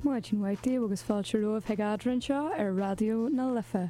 Maidin mhaith daoibh agus fáilte romhaibh chuig Eadrainn anseo ar Raidió na Life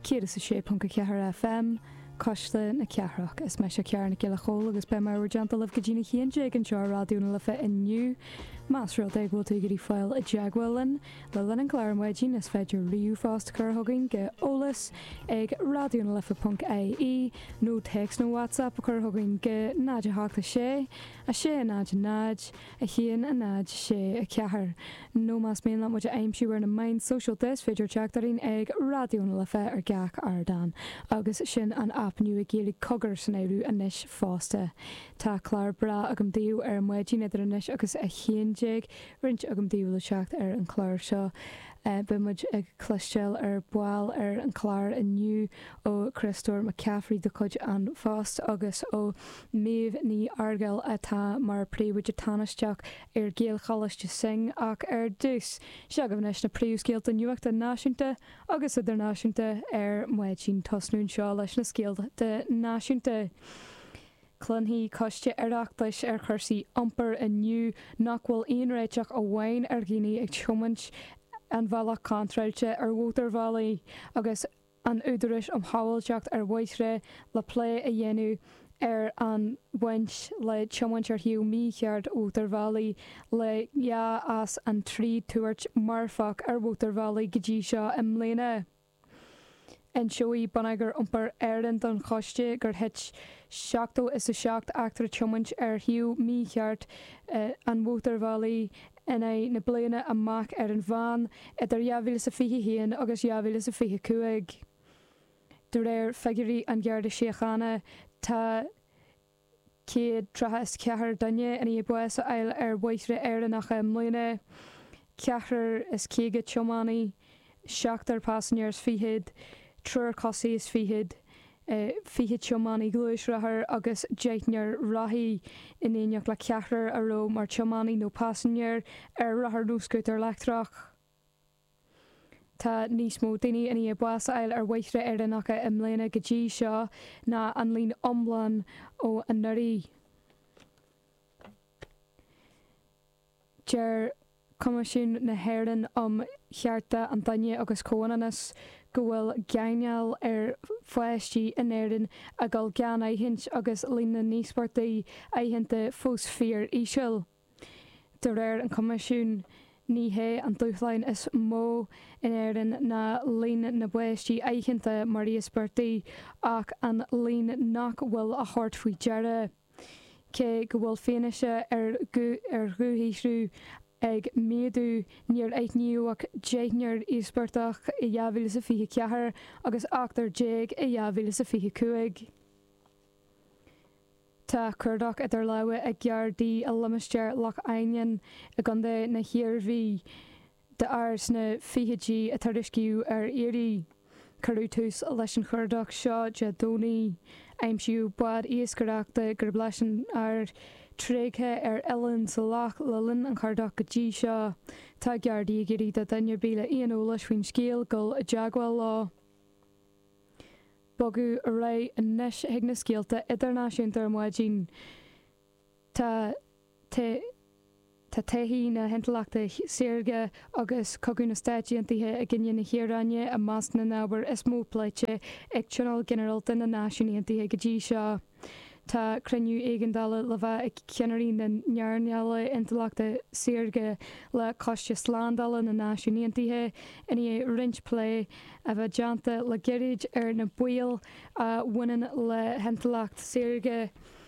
106.4 FM, Cuisle na Cathrach. Is meise Ciara Nic Giolla Chomhaill agus beidh mé in bhur dteannta libh go dtí'n a haon déag anseo ar Raidió na Life inniu. Más rud é go bhfuil tú ag iarraidh fáil i dteagmháil linn le linn an chláir ar maidin, is féidir ríomhphost a chur chugainn go eolas ag raidionalife.ie nó téacs nó WhatsApp a chur chugainn go 0 8 6 6, 0, 0, 1, 0, 6, 4, nó más mian leat muid a aimsiú ar na meáin sóisialta is féidir teacht orainn ag Raidió na Life ar gach ardán agus sin an aip nua Gaeilge Cogar san áireamh anois fosta. Tá clár breá agam daoibh ar maidin idir anois agus 11, roinnt agallaimh le teacht ar an chlár seo. Beidh muid ag cloisteáil ar ball ar an chlár inniu ó Chriostóir Mac Cafraidh de chuid An Phost agus ó. Niamh Ní Fhearghail atá mar Príomhoide Tánaisteach ar Ghaelcholáiste Synge ach ar dtús, seo agaibh anois na príomhscéalta nuachta náisiúnta agus idirnáisiúnta ar maidin. Tosnóimid anseo leis na scéalta náisiúnta. Cluinfidh coiste Oireachtais ar chúrsaí iompair inniu nach bhfuil aon réiteach amháin ar dhaoine ag tiomáint an bhealaigh contráilte ar mhótarbhealaí agus, an Údarás um Shábháilteacht ar Bhóithre le plé a dhéanamh ar an bhaint le tiomáint ar thaobh mícheart mhótarbhealaí le dhá as an trí tuairt marfach ar mhótarbhealaí go dtí seo i mbliana. Inseoidh Bonneagar Iompair Éireann don Choiste gur thit seachtó is a seacht eachtra tiomáint ar thaobh mícheart an mhótarbhealaigh, in aghaidh na bliana amach ar an mheán idir 2021 agus 2025. De réir figiúirí an Gharda Síochána, tá 134 duine i ndiaidh bás a fháil ar bhóithre Éireannacha i mbliana, ceathrar is caoga tiománaí, seachtar pasanjéir is fichead, triúr cosaí is fichead, fiche tiománaí gluaisrothair agus deichniúr rothaí in éineacht le ceathrar a raibh mar tiománaí nó pasanjéir ar rothar nó scútar leictreach. Tá níos mó daoine i ndiaidh bás a fháil ar bhóithre Éireannacha i mbliana go dtí seo ná an líon iomlán ó anuraidh. Deir Coimisiún na hÉireann um Chearta an Duine agus Comhionannas go bhfuil gáinneáil ar pháistí in Éirinn ag dul gan aithint agus líon na n-íospartaigh aitheanta fós fíor-íseal. De réir an Choimisiúin, ní hé an dúshlán is mó in Éirinn ná líon na bpáistí aitheanta mar íospartaigh ach an líon nach bhfuil á thabhairt faoi deara. Cé go bhfuil fianaise ar ar dhúshaothrú ag méadú, níor aithníodh ach deichniúr íospartach i 2024 agus ochtar déag i 2025. Tá cuardach idir lámha ag Gardaí i limistéar Loch Ainninne i gContae na hIarmhí D'fhear sna fichidí a tuiriscíodh ar iarraidh. Cuireadh tús leis an chuardach seo Dé Domhnaigh. Aimsíodh bád iascaireachta gurb leis an fhear, tréigthe ar oileán sa loch le linn an chuardach go dtí seo. Tá Gardaí ag iarraidh de dhuine ar bith le aon eolas faoin scéal dul i dteagmháil leo. Bogadh ar aghaidh anois chuig na scéalta idirnáisiúnta ar maidin. Tá taithí na hintleachta saorga agus cogadh na Stáit Aontaithe i gcoinne na hIaráine i measc na n-ábhar is mó pléite ag Tionól Ginearálta na Náisiún Aontaithe go dtí seo. Tá cruinniú éigeandála le bheith ag ceannairí na hearnála intleachta saorga le Coiste Slándála na Náisiún Aontaithe i ndiaidh roinnt plé a bheith déanta le gairid ar na baoil a bhaineann le hintleacht saorga.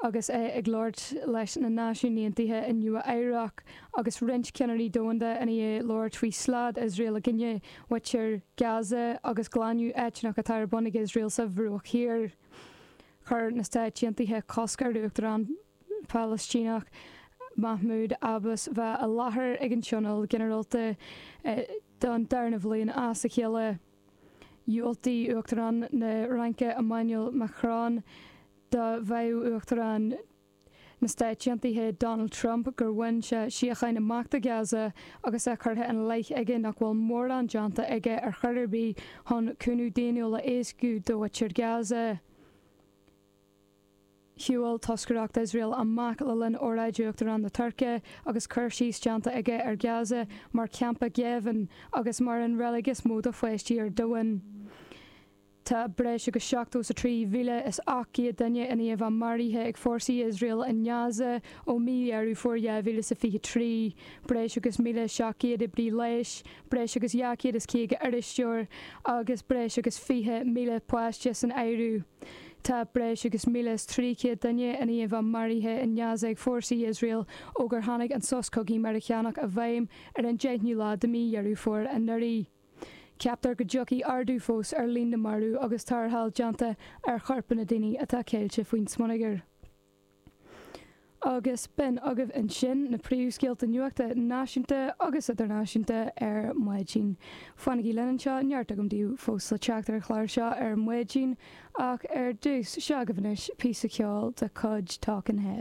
Agus é ag labhairt leis na Náisiúin Aontaithe i Nua Eabhrac agus roinnt ceannairí domhanda i ndiaidh labhairt faoi slad Iosrael i gcoinne mhuintir Gaza agus glanadh eitneach atá ar bun ag Iosrael sa Bhruach Thiar, chuir na Stáit Aontaithe cosc ar Uachtarán Palaistíneach Mahmoud Abbas bheith i láthair ag an Tionól Ginearálta don darna bhliain as a chéile. Dhiúltaigh Uachtarán na Fhraince Emmanuel Macron do mhaíomh Uachtarán na Stáit Aontaithe Donald Trump gur bhain sé síocháin amach do Ghaza agus é curtha ina leith aige nach bhfuil mórán déanta aige ar chor ar bith chun cúnamh daonnúil a éascú do mhuintir Ghaza. Shiúil toscaireacht Iosrael amach le linn óráid Uachtarán na Tuirce agus cur síos déanta aige ar Ghaza mar campa géibhinn agus mar an reilig is mó do pháistí ar domhan. Tá breis agus 73,800 duine ina iomlán maraithe ag fórsaí Iosrael i nGaza ó mhí Dheireadh Fómhair 2023, breis agus 1,700 oibrí leighis, breis agus 250 iriseoir agus breis agus 20,000 páiste san áireamh. Tá breis agus 1,300 duine ina iomlán maraithe in Gaza ag fórsaí Iosrael ó gur tháinig an sos cogaidh Meiriceánach i bhfeidhm ar an deichniú lá de mhí Dheireadh Fómhair anuraidh. Ceaptar go dtiocfaidh ardú fós ar líon na marbh agus tarrtháil déanta ar chorpanna daoine atá ceilte faoin smionagar. agus b'in agaibh ansin na príomhscéalta nuachta náisiúnta agus idirnáisiúnta ar maidin. Fanaigí linn anseo, neart agam daoibh fós le teacht ar an chlár seo ar maidin, ach ar dtús, seo agaibh anois píosa ceoil de chuid Talking Heads.